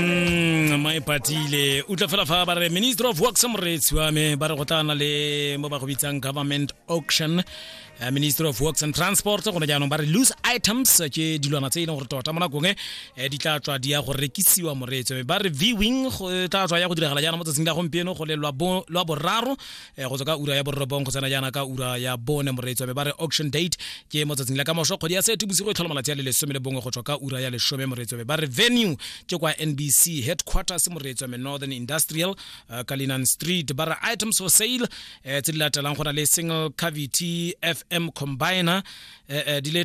mm, mae patile utlwa fela fa ba re minister of works moreetsi wa me ba re go tana le mo ba go bitsang government auction uh, minister of works and transport gone jaanong ba re loose items ke dilwana tse e leng gore tota mo nakong e di tla tswa di ya go rekisiwa moreetsi me ba re viewing go tla tswa ya go diragala jaana mo tsatsing la gompieno go le lwa boraro Eh, go tswa ka ura ya borobong go tsena jaana ka ura ya bone moreetsi wa me ba re auction date ke mo tsatsing la ka moso kgwedi ya sete bosigo e tlhola malatsi a le lesome le bongwe go tswa ka ura ya lesome moreetsi wa me ba re venue ke kwa nbc headquarters moreetsi wa me northern industrial uh, kalinan street ba re items for sale eh, tse di latelang go na le single cavity fm combiner eh, eh, di le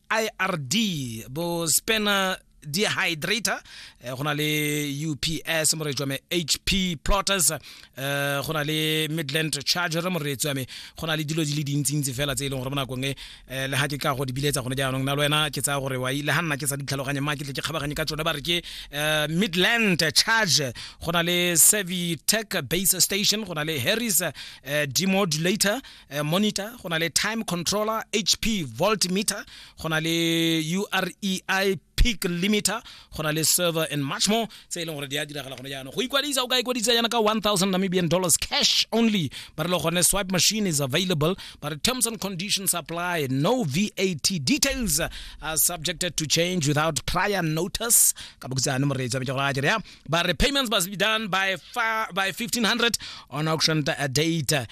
ird bo spanner dehydrator eh, go na le ups moreetsi wa me hp plotters eh, go na le midland charger moreetsi wa me go na le dilo di le dintsintsi fela tse e leng gore mo nakong e eh, le ga ke ka go di biletsa gone jaanong na le wena ke tsaya gore wa ile ga nna ke sa ditlhaloganye ma ke tle ke kgabaganye ka tsone ba re ke midland charge go na le servitech base station go na le harris demodulator uh, monitor go na le time controller hp volt meter go na le urei peak limiter go na le server and much more tse e leng gore di a diragala gone jaanong go ikwadisa o ka ikwadisa yana ka 1000 namibian dollars cash only ba re le gone swipe machine is available but terms and conditions apply no vat details are subjected to change without prior notice ka bokutsa ne moreetsi a bitsa gore a kere ya but repayments must be done by far, by 1500 on auction date uh,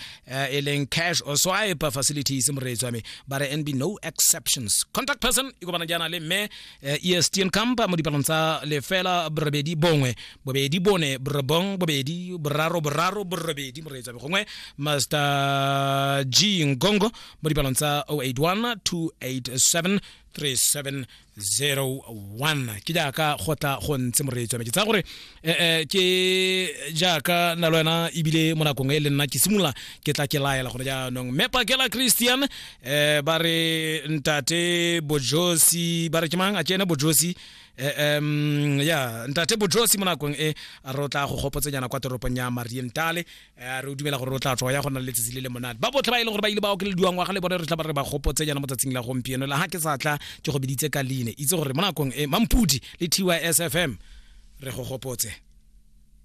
e cash or swipe facilities moreetso ame ba re nb no exceptions contact person e kopana jaana le mme uh, estn camp mo dipalong tsa lefela borobedi bongwe bobedi bone borobong bobedi boraro boraro borobedi moreetso ame gongwe master g ngongo mo dipalong tsa 081 287 37 01 ke jaaka go tla go ntse moreetsi wa me ke tsaya gore eh, eh, ke jaaka na le wena ebile mo nakong e le nna ke simolola ke tla ke laela gone jaanong mme pakela christian eh, ba re ntate bojosi ba re ke mang a ke ene bojosi eh, em, ya ntate bojosi mo nakong e a re o tla go gopotsenyana kwa toropong ya marientale re o dumela gore o tla tswa ya go nna le letsatsi le le monate ba botlhe ba e leng gore ba ile ba okelediwa ngwaga le bone re tla ba re ba gopotse jaana mo tsatsing la gompieno la ga ke sa tla ke go biditse ka leine itse gore mo nakong e mampudi le tys fm re go gopotse